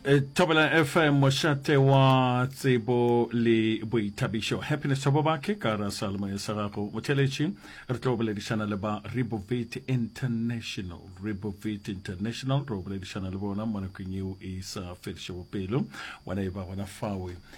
Eh, thobela fm mošate wa tsebo le boithabišo happiness thobo bake ka ra salmo ya sa gago motheletši re tlo boledišana le ba rebovit international rebovit international re boledišana le bona mo nakong eo e sa fedišego pelo wena e ba gona fawe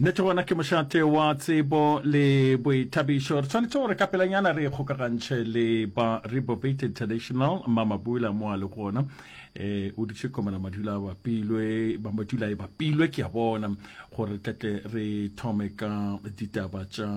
Nnete gona ke mošate wa tsebo le boithabišo. Re tshwanetse gore ka pelanyana re kgokagantšhe le ba Rebobit International. Mamabula mo a le gona um o dutše komela madula a bapilwe ba madula e bapilwe ke a bona gore tletle re thome ka ditaba tša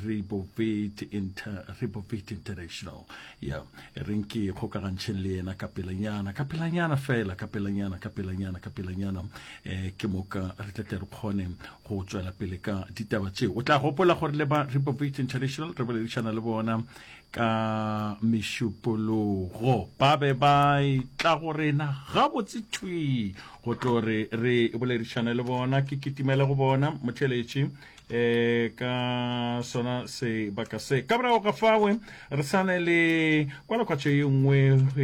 Rebobit Inter Rebobit International ya re nke kgokagantšheng le yena ka pelanyana ka pelanyana fela ka pelanyana ka pelanyana ka pelanyana eh ke moka re tla tle re kgone go tswela pele ka ditaba tseo o tla gopola gore le ba repovate international re boledišana le bona ka mešupologo ba be ba tla go rena gabotse thwi go tlo re re boledišane le bona ke kitimele go bona motheletši eh ka sona sebaka se ka morago ga fawe re sane le kwalakwatšo ye nngwe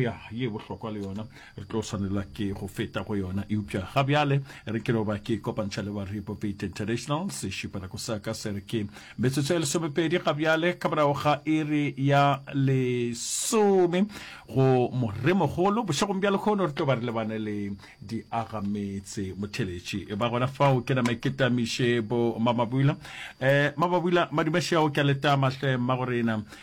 ya ye bohlokwa le yona re tlo swanelwa ke go feta go yona eupša ga bjale re ke loba ke kopantšha le ba repopaid international sešupanako sa ka se re ke metsotso ya lesomepedi ga bjale ka morago ga iri ya lesome go moremogolo bošegong bja lekgono re tlo ba re lebane le diagametse motheletši e ba gona fao ke name ke tamiše bo mamabula um eh, mamabula madumešeago ke a letama hle mma gorena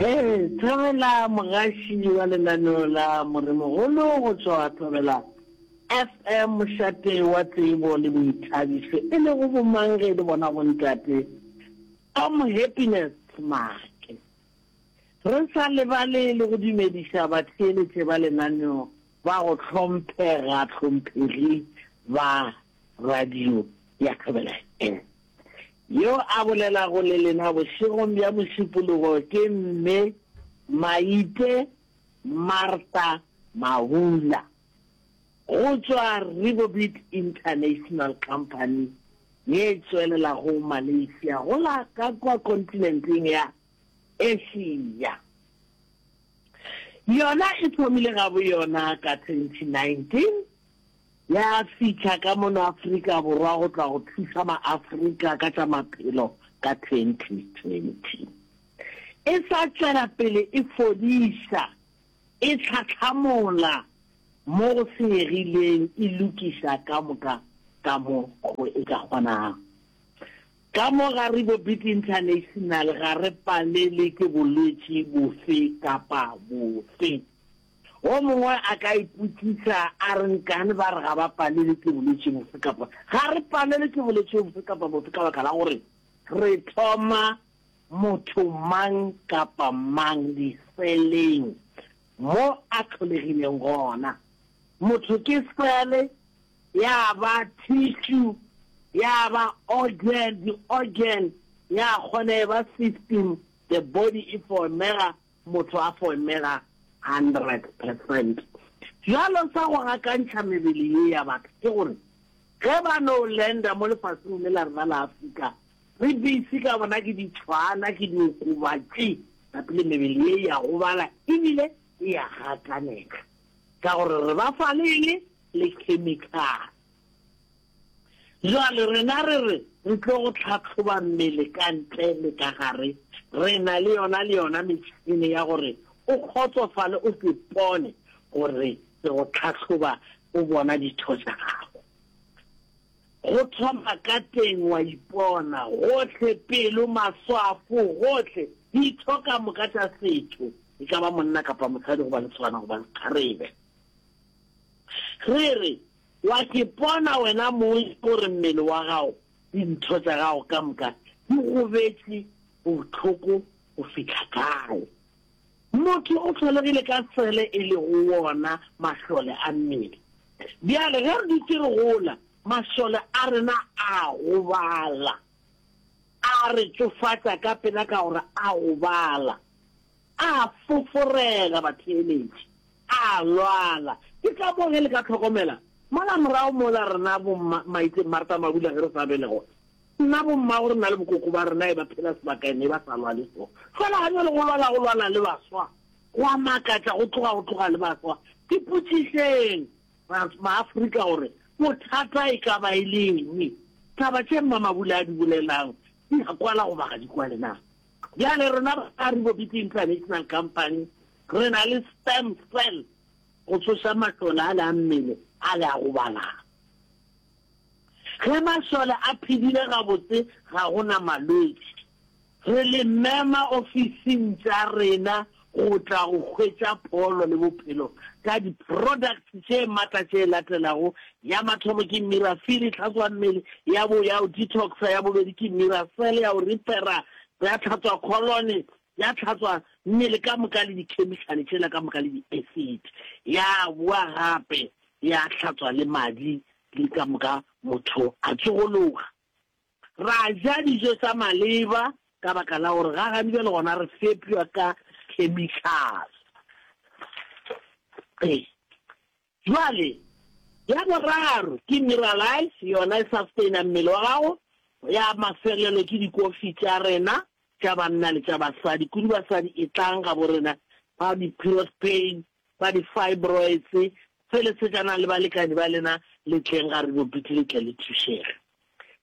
Ee, Thobela Mogaši wa lenaneo la Moremogolo go tšwa Thobela FM, mošate wa tsebo le boithabišo, e lego bomang ge e le bona bontate Tom Happiness Make. Re sa lebale le go dumediša batheeletše ba lenaneo Ba go hlomphega hlomphegi ba radio ya Thobela FM. Yo a bolelago le lena bošegong bja Mošupologo ke Mme Maite Martha Mahula go tšwa Ribobit International Company ye tswelelago Malaysia go la ka kwa kontinenteng ya Asia. Yona e thomile ga boyona ka 2019, ya fihla ka mono Afrika Borwa go tla go thuša Maafrika ka tša maphelo ka 2020. E sa tšwela pele e fodiša, e tlhahlamola mo go senyegileng, e lokiša ka moka ka mo go e ka kgonago. Ka mo gare bo Big International ga re palelwe ke bolwetši bofe kapa bofe. Wo mongwe a ka ipotšiša a re nkane ba re ga ba palelwe ke bolwetši bofe kapa bofe. Ga re palelwe ke bolwetši bofe kapa bofe ka baka la gore re thoma motho mang kapa mang diseleng mo a tlholegileng gona. Motho ke sele ya ba tissue, ya ba organ, di-organ, ya kgona e ba system, the body e formega, motho a formega hundred percent. Bjalo sa go gakantšha mebele ye ya batho ke gore ge ba no landa mo lefaseng le la rena la Afrika, re busy ka bona ke ditšhwana, ke diokobatši, gape mebele ye ya gobala ebile e ya gakanega ka gore re ba fa le eng? le khemikhale. Jwale rena re re re tlo go tlhatlhoba mmele ka ntle le ka gare, re na le yona le yona metšhene ya gore o kgotsofale o se pone gore re go tlhatlhoba o bona ditho tša gago. Go thoma ka teng wa ipona, gohle, pelo, maswafo, gohle, ditho ka moka tša setho, e ka ba monna kapa mosadi goba lesogana goba sekgarebe. Re re, Wa ke bona wena Mose gore mmele wa gago le ditho tša gago ka moka di gobetše bohloko go fihla kae? Motho o hlologile ka sele e lego wona mašole a mmele. Bjale ge re dutše re gola, mašole a rena a gobala. A re tšofatša ka pela ka gore a gobala. A foforela batheeletši, a lwala. Ke ka moo ge le ka hlokomela, mola morago mola rena bomma, maite, Martha Mabula ge re sa be le gona, nna bommago re na le bokoko ba rena e ba phela sebakaena e ba sa lwale so. Fela ga bjale go lwala, go lwala le baswa. Go a makatša, go tloga, go tloga le baswa. Ipotšišeng, ba, Maafrika gore bothata e ka ba e le eng. Taba tše Mma Mabula a di bolelang di a kwala goba ga di kwale na? Bjale rena ba ka Ribobiti International Company re na le stem cell go tsoša matlola ale a mmele ale a go balana. Ge masole a phedile gabotse ga go na malwetši. Re le mema ofising tša rena go tla go hwetša pholo le bophelo ka di products tše matla tše latelago, ya mathomo ke Mirafiri, tlhatswammele, ya bo ya go detoxa, ya bobedi ke Miracell, ya go repera, ya tlhatswa kholone, ya tlhatswa mmele ka moka le dikhemikhale tšela ka moka le di acid, ya boa gape ya hlatswa le madi le ka moka motho a tsogologa. Ra ja dijo tša maleba ka baka la gore ga gane bjale gona re fepjwa ka khemikhale. Bjale, ya boraro ke Miralax, yona e sustainer mmele wa gago. Ya mafelelo ke dikofi tša rena tša banna le tša basadi. Kudu basadi etlang gaborena, ba di-Piros Pain, ba di-fibroids, felesetšana le balekani ba lena le tleng ga Renopiti le tle le thušege.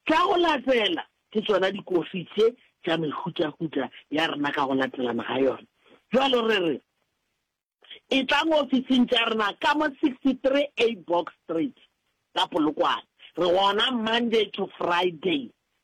Tša go latela ke tšona dikofi tše tša mehutahuta ya rena ka go latelana ga yona. Bjalo re re, Etlang ofising tša rena ka mo 63 A Box Street, ka Polokwane. Re gona Monday to Friday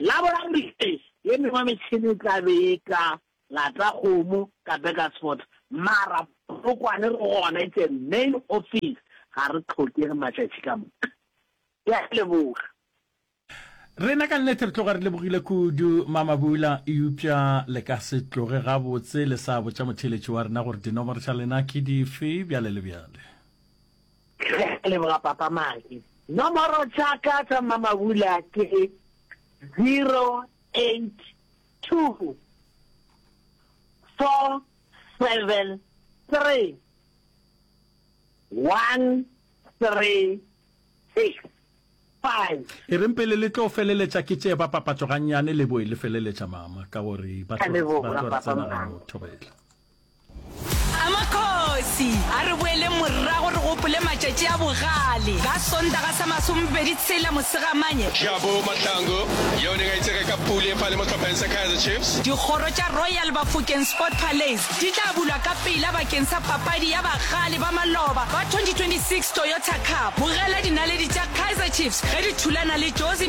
La boraro ee, ye mengwe metšhene e tla be e ka lata kgomo ka Burgersfort, mara Polokwane re gona, it's a main office, ga re tlhokege matšatši ka moka. Ke a leboga. Rena ka nnete re tloga re lebogile kudu Mamabula, eupša le ka se tloge gabotse le sa botša motheeletši wa rena gore dinomoro tša lena ke dife bjale le bjale. Re a leboga Papa Maki. Nomoro tša ka tša mmamabula ke 0824731365. E reng pele le tlo feleletša ke tše ba papatšo gannyane le boe le feleletša mama ka gore ba tlo re tsena gano thobela. A Makgosi a re boeleng morago re gopole matšatši a bogale. Ka Sontaga sa masomepedi tshela Mosegamanye, Jabu Mahlangu, yeo neng a itsege ka Pule fa le mo tlhopheng sa Kaizer Chiefs. Dikgoro tša Royal Bafokeng Sport Palais di tla bulwa ka pela bakeng sa papadi ya bagale ba maloba ba 2026 Toyota Cup. Bogela dinaledi tša Kaizer Chiefs ge di thulana le Jozi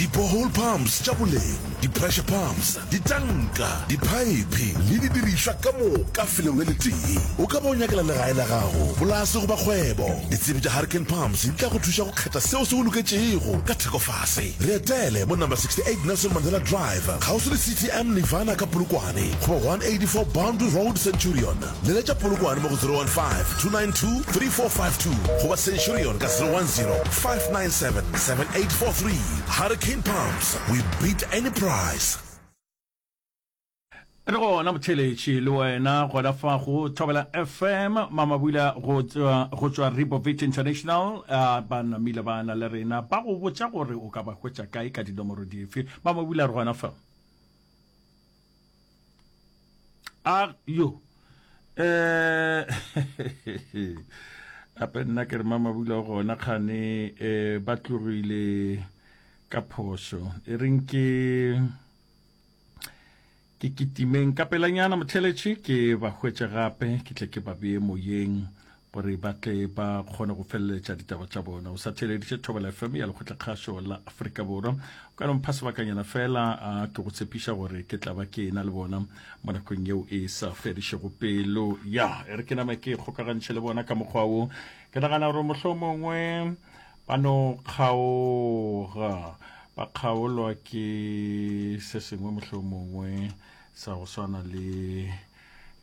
di-borehole pumps tša boleng di-pressure pumps ditanka diphaephe le didirišwa ka moka felelo le letee o ka bo nyakela legae la gago polase goba kgwebo ditsebi tša hurricane pumps di tla go thuša go kgetha seo se go loketšego ka thekofase re etele mo number 68 nelson mandela drive kgauswi le ctm nivana ka polokwane goba 184 boundary road centurion Leletša Polokwane mo go 015-292-3452 goba Centurion ka 010-597-7843. Hurricane Pumps, we beat any price. Re gona motheletši le wena gona fago Thobela FM mamabula go go tšwa Ribovic International a ba namile ba na le rena ba go botša gore o ka ba hwetša kae ka dinomoro dife mamabula re gona fa a yo eh ape nna ke re mamabula gona kgane eh ba tlogile ka phoso e reng ke ke kitimeng ka pelanyana motlheletše ke ba hwetše gape ke tle ke ba beye moyeng gore ba tle ba kgone go feleletša ditaba tša bona o sa theeleditše thobela fm ya lekgotlakgašo la aforika borwa o ka nompha sebakanyana fela a ke go tshepiša gore ke tla ba ke ena le bona mo nakong yeo e sa fedišego pelo ya e re ke name ke kgokagantšhe le bona ka mokgwa wo ke nagana gore mohlho mongwe ba no kgaoga ba kgaolwa ke se sengwe mohlho mongwe sa go swana le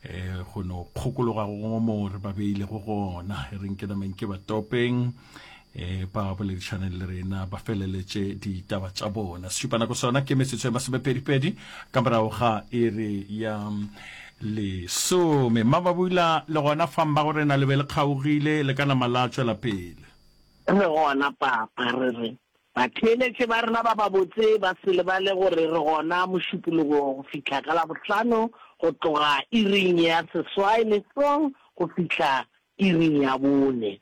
eh go no kgokologa go mo re ba beile go gona e reng ke nameng ke ba topeng eh ba boledišaneng le rena ba feleletše ditaba tša bona sešupa nako sona ke metsotso ya masomepedipedi ka morago ga iri ya lesome mmababula le gona fang ba go rena le be le kgaogile le ka nama la tšwela pele le gona papa re re Batheeletše ba rena ba babotse ba se lebale gore re gona Mošupologo go fihla ka Labohlano go tloga iring ya seswai mesong go fihla iring ya bone.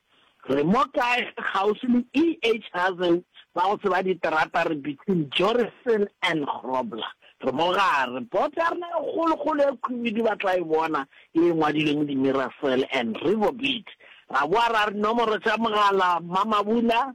Re mo kae kgauswi le EH Hazen ba go tseba diterata re between Jorrison and Grobler. Re mo gare. Boto ya rena e kgolokgolo e khwibidu ba tla e bona ye e ngwadilwe mo dimirasel and riverbeat. Ra boa ra re nomoro tša mogala Mma Mabula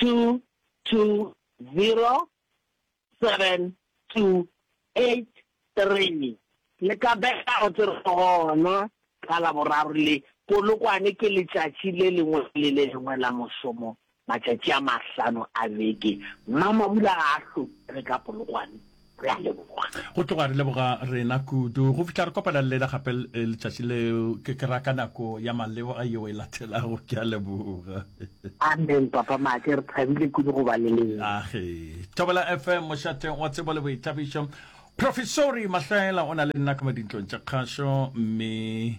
2207283 le ka bega go tse gona ka Laboraro le Polokwane ke letšatši le lengwe le le lengwe la mošomo matšatši a mahlano a beke. Mmamabula ga a hlomele ka Polokwane. Re a leboga. Go tloga re leboga rena kudu go fihla re kopana le lena gape letšatši leo, ke ke ra ka nako ya maleoga yeo e latelago. Ke a leboga. Amen Papa Make, re thabile kudu go ba le lena. Age. Thobela FM, mošateng wa tsebo le boithabišo. Profesori Mahlaela o na le nna ka mo dintlong tša kgašo, mme.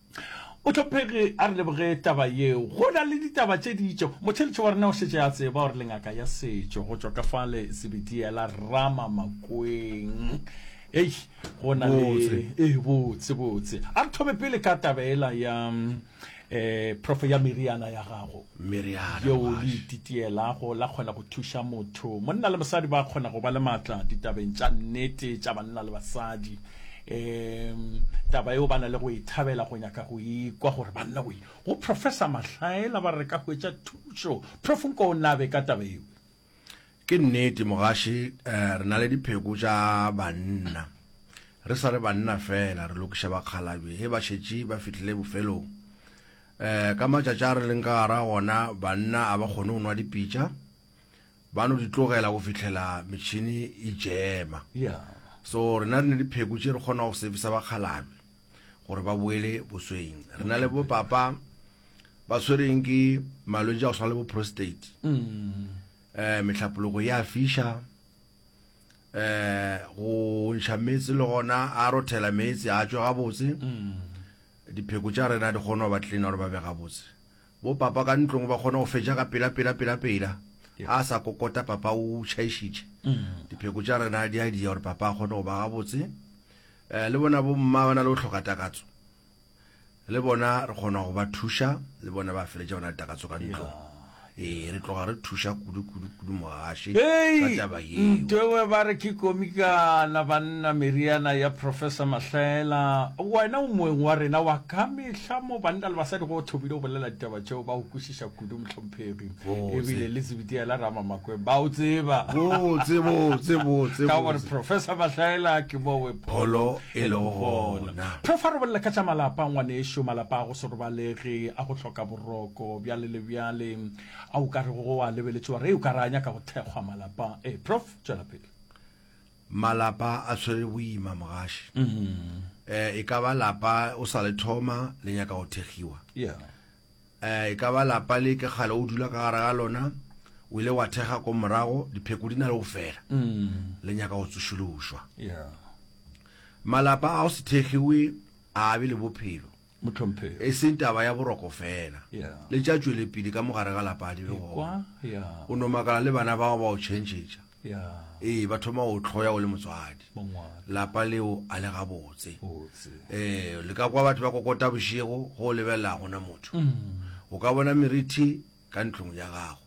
O hlophege a re leboge taba yeo. Go na le ditaba tše ditšo. Motheletši wa rena o šetše a tseba gore le ngaka ya setšo go tšwa ka fale Zebediela Rama Makweng. Hei, go na le e botse botse. A re thome pele ka taba ela ya eh prof ya meriana ya gago. Meriana yeo le ititielago la kgona go thuša motho. Monna le mosadi ba kgona go ba le matla ditabeng tša nnete tša banna le basadi. Ee, taba yeo ba na le go e thabela, go nyaka go e kwa gore banna go go Professor Mahlaela ba re ka hwetša thušo. Prof nko o nabe ka taba yeo. Ke nnete mogaši, eh, re na le dipheko tša banna. Re sa re banna fela, re lokiša bakgalabje he ba šetše ba fihlile bofelong. Eh, ka matšatši a re leng ka gara gona, banna a ba kgone go nwa dipitša. ba no di tlogela go fihlela metšhini e jema so rena re ne dipheko tše re kgona go servisa bakgalabje gore ba boele bosweng re na le bo papa ba tshwereng ke malwetse a go swana le bo prostate um metlhapologo ya fisha eh go ntšha metsi le gona a rothela metsi a tswe gabotse mm. dipheko tša rena di kgona go ba tlina gore ba be gabotse Bo papa ka ntlong ba kgona go fetša ka pela pela pela pela. A sa kokota papa o tšhaišitše. Dipheko tša rena di a diya gore papa a kgone go ba gabotse. Le bona bo mma ba na le go hloka takatso. Le bona re kgona go ba thuša, le bona ba feletša ba na le takatso ka ntlong. Ee, re tloga re thuša kudu kudu. kudu mogaši ka Hei! taba yeo. Ntewe ba re ke komikana banna meriana ya Professor Mahlaela. Wena o moeng wa rena wa ka mehla mo banna le basadi go thomile go bolela ditaba tšeo ba go kwešiša kudu mohlomphegi. Botse. Ebile le Zibitiya la Ramamakweng ba o tseba. Botse, botse, botse, Ka gore botse. Professor Mahlaela ke mo we Pholo e lego gona. Prof a re bolela ka tša malapa ngwanešu, malapa a go se robalege, a go hloka boroko, bjale le bjale. A o ka rego go a lebeletšwe wa re o ka re a nyaka go thekgwa malapa? Ee, Prof. Tšwela pele. Malapa a tshwere boima, mogaši. Eh, e ka ba lapa o sa le thoma le nyaka go thegiwa. Yeah. Eh, e ka ba lapa le ke kgale o dula ka gare ga lona, o ile wa thega ko morago, dipheko di na le go fela, le nyaka go tsošološwa. Yeah. Malapa a go se thegiwe a be le bophelo. e seng taba ya boroko feela, le tša tšwelepele ka mo gare ga lapa di le gona. O no makala le bana bao ba o tšhentšhetša, ee, ba thoma go o hloya o le motswadi. Lapa leo a le gabotse. Ee, le ka kwa batho ba kokota bošego go o lebelela go na motho. O ka bona merithi ka ntlong ya gago.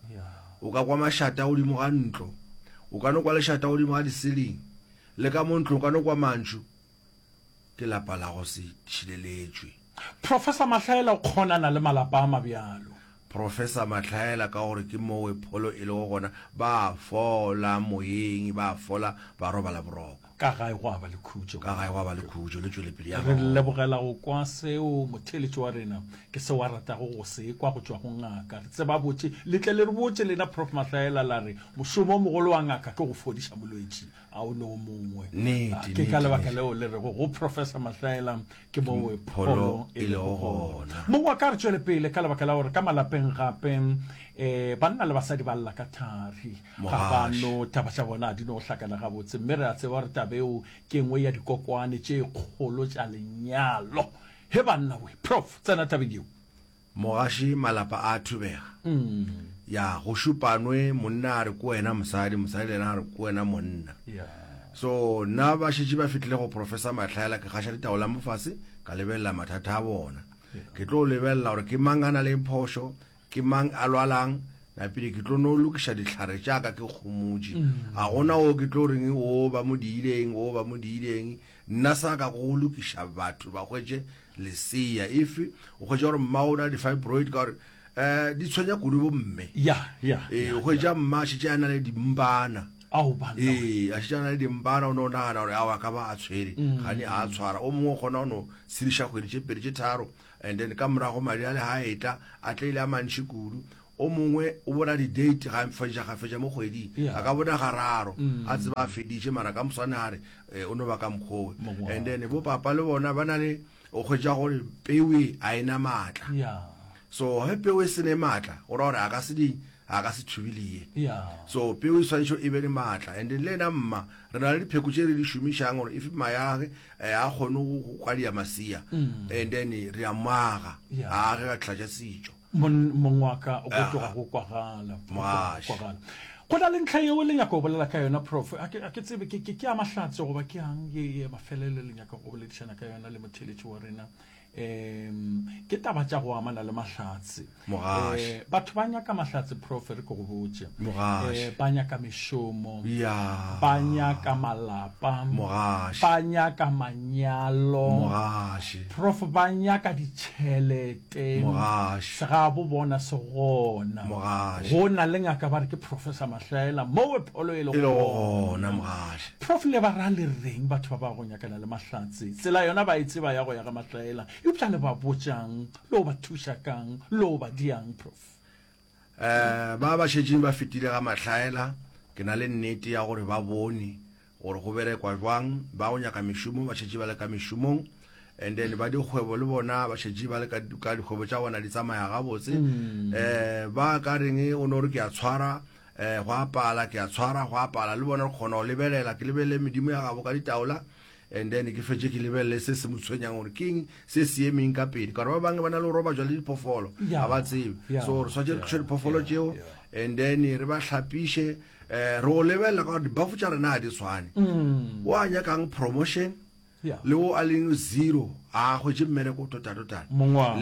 O ka kwa mašata godimo ga ntlo. O ka no kwa lešata godimo ga disiling. Le ka mo ntlong o ka no kwa mantšu. ke lapa la go se tšhileletšwe. Professor Mahlaela o kgonana le malapa a mabjalo. Professor Mahlaela ka gore ke mowe pholo e lego gona ba fola moyeng, ba fola ba robala boroko. Ka gae gwa ba le khutšo. Ka gae gwa ba le khutšo le tšwelepele ya Re lebogela go kwa seo motheeletši wa rena ke seo a ratago go se kwa go tšwa go ngaka. Re tseba botše. Le tle le re botše lena Prof Mahlaela la re mošomo o mogolo wa ngaka ke go fodiša molwetši. a o ne o mongwe ke ka lebaka leo le rego go professor mahlaela ke mo we pholo e lego gona mongwe wa ka re tšwele pele ka lebaka la gore ka malapeng gape um banna le basadi ba lla ka thari ga ba no taba tša bona a di no hlakana gabotse mme re a tseba gore tabeo ke nngwe ya dikokwane tše kgolo tša lenyalo he banna we prof tsena tabeng yeo Mogaši malapa a thubega. Ya, go šupanwe, monna a re ko wena mosadi, mosadi le yena a re ko wena monna. So, nna ba šetše ba fitlhile go Professor Matlhaela, ke gaša ditaola mo fase, ka lebelela mathata a bona. Ke tlo lebelela gore ke mang a na leng phošo, ke mang a lwalang, napile ke tlo no lokiša dihlare tša ka ke kgomotše. Ga gona o ke tlo reng o ba mo diileng, o ba mo diileng, Nna sa ka go lokiša batho ba hwetše lesea if o hwetša gore mma o na le di-fibroid ka gore um di tshwenya kudu bomme ya ya ee o hwetša mma a šetše a na le dimpana ao ba nna ee a šetše a na le dimpana o ne o nagana gore ao a ka ba a tshwere gane a a tshwara o mongwe o kgona o no tshediša kgwedi tše pedi tše tharo and then ka morago madi a le ga a etla a tlaile a mantšhi kudu O mongwe o bona di-date ga fetša ga fetša mo kgweding, Yeah. a ka bona gararo, a tseba a feditše, mara ka moswane a re eh, o no ba ka mokgowe. Mongwe wa And then bo papa le bona ba na le, o kgwetša gore peu e a e na maatla. ya So ge peu e se ne maatla, go ra gore a ka se di, a ka se thubilie. ya so peo e swanetše e be le maatla and le ena mma re na le dipheko tše re di šomišang gore if mayage eh, a kgone go go kwadia masea and then re a mmaga ya a ge ka tlhatša setšo mong wa ka o go tloga go kwagala go na le ntlha yeo le nyaka go bolela ka yona prof a ke tsebe ke ke ya mahlatse goba ke yang ye ye mafelelo le nyaka go boledišana ka yona le motheletši wa rena um ke taba tša go amana le mahlatse eh, batho ba nyaka mahlatse prof re ke go botse eh, ba nyaka mešomo ba nyaka malapa ba nyaka manyalo prof ba nyaka ditšhelete teng se ga bo bona se gona go na le ngaka ba re ke professor mahlaela mowe pholo e le gona mogaše prof le ba ra le reng batho ba ba go nyakana le mahlatse tsela yona ba e tseba ya go ya ga mahlaela eupša le ba botšang lo ba thuša kang lo ba diang prof Ba ba šetšeng ba fetile ga mahlaela, ke na le nnete ya gore ba bone gore go berekwa jwang. Ba go nyaka mešomo ba šetše ba le ka mešomong, and then ba dikgwebo le bona ba šetše ba le ka dikgwebo tša bona di tsamaya gabotse. Um ba ka reng o no re ke a tshwara um go a pala, ke a tshwara go a pala, le bona re kgona go lebelela. Ke lebelele medimo ya gabo ka ditaola, and then ke fetše ke lebelele se se mo tshwenyang gore keng se se emeng ka pele ka gore ba bangwe ba na le go roba jwa le diphoofolo ga ba tsebe so re swatse re thuše diphoofolo tšeo and then re ba tlhapiše um re go lebelela ka gore dibafo tša rena ga di tshwane mm. o a nyakang promotion le o a leng zero a kgwetse mmereko totatotana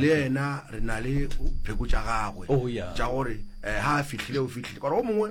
le ena re na le pheko tša gagwe oh, tša gore um eh, ga a fitlhile o fitlhile gore o mongwe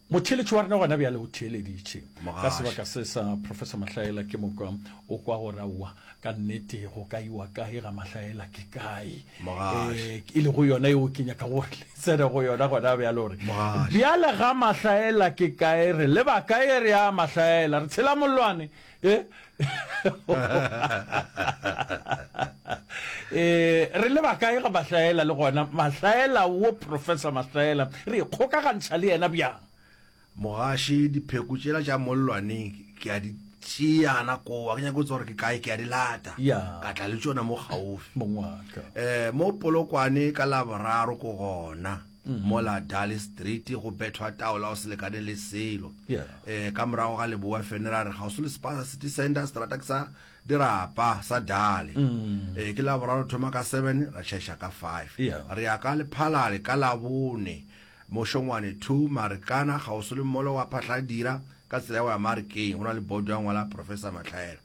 Motheeletši wa rena gona bjale o theeleditše ka sebaka se sa Professor Mahlaela. Ke mokwa o kwa gore, aowa, ka nnete go ka iwa kae ga Mahlaela? Ke kae e lego yona yeo ke nyakago gore le tsene go yona gona bjale? Gore bjale ga Mahlaela ke kae? Re leba kae re ya Mahlaela? Re tshela mollwane eh? eh re le bakae ga mahlaela le gona mahlaela wo professor mahlaela re kgokagantšha le yena bjang mogaši dipheko tšela tša mollwaneng ke a di tšeana kowa ke nyako tsa gore ke kae ke a di lata ka tla le tsona mo gaufi um mo polokwane ka laboraro ko gona mola Dale Street go bethwa taola o se lekane le selo. Eh, ka morago ga leboa fene ra re gaoso le Spaza City Center strata ke sa dirapa sa Dale. Eh, ke la boraro thoma ka seven ra chesha ka five. Re ya ka lephalale ka labone mošongwane two Marikana gaoso le molo wa Phahladira ka tsela ya go ya Marikeng go na le bodo ya ngwala Professor Matlhaela.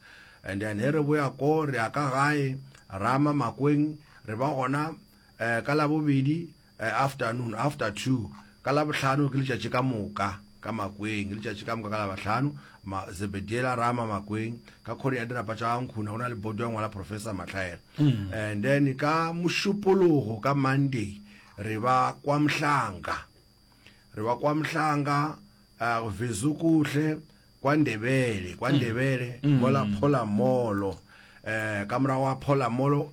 And then he re boya ko re ya ka gae Rama Makweng re ba gona ka Labobedi afternoon, after two, ka Labohlano ke letšatši ka moka ka makweng, ke letšatši ka moka ka Labahlano, ma, Zebediela Rama makweng, ka khoreng ya dirapa tša Gankhuna, go na le bodo ya ngwala Professor Mahlaela. And then ka Mošupologo, ka Monday, re ba kwa Mhlanga. Re ba kwa Mhlanga, uh, Vezukuhle, kwa Ndebele, kwa Ndebele, mola Phola Molo. Eh, ka morago ga Phola Molo,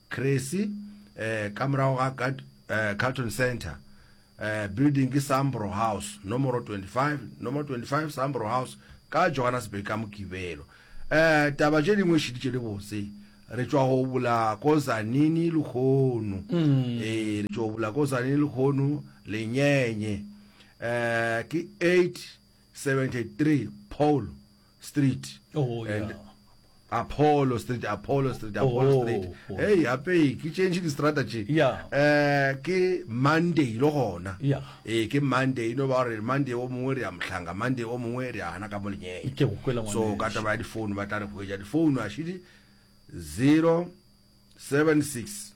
Cressy, eh, ka morago ga Cat, eh, Carlton Centre. Eh, building ke Sambro House, nomoro 25, nomoro 25 Sambro House, ka Johannesburg ka Mokibelo. Eh, taba tše dingwe šeditše le botse. Re tšwa go bula ko Zanini lehono. Eh, re tšwa go bula ko Zanini lehono, Lenyenye. Eh, ke 8, 73 Paulo Street Oh, and yeah. Apollo Street, Apollo Street, Apollo Oh, Street. oh. Hey, hape ke change di strata tše. Yeah. Eh ke Monday lo gona. Yeah. Eh ke Monday no ba re Monday o mongwe re ya mohlanga, Monday o mongwe re ya hana ka molenyeng. Ke go kwela So ngwaneso. ka taba ya di phone ba tla re hwetša di phone a shidi 076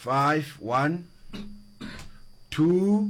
51 2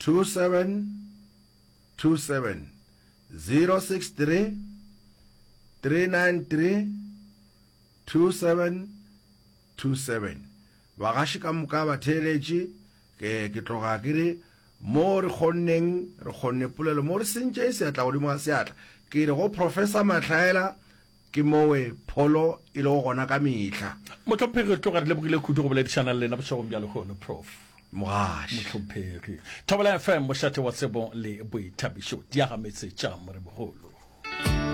2727 063 393 2727 Bagaši ka moka ba theeletše ke, ke tloga ke re mo re kgonneng re kgonne polelo mo re sentše seatla godimo ga seatla ke re go Professor Mahlaela Ke mowe pholo e lego gona ka mehla. Mohlomphegi, re tloga re lebogile kudu go boledišana le lena bošegong bja lehono, Prof. Mogaši. Mohlomphegi. Thobela FM, mošate wa tsebo le boithabišo. Diagametse tša Morebogolo.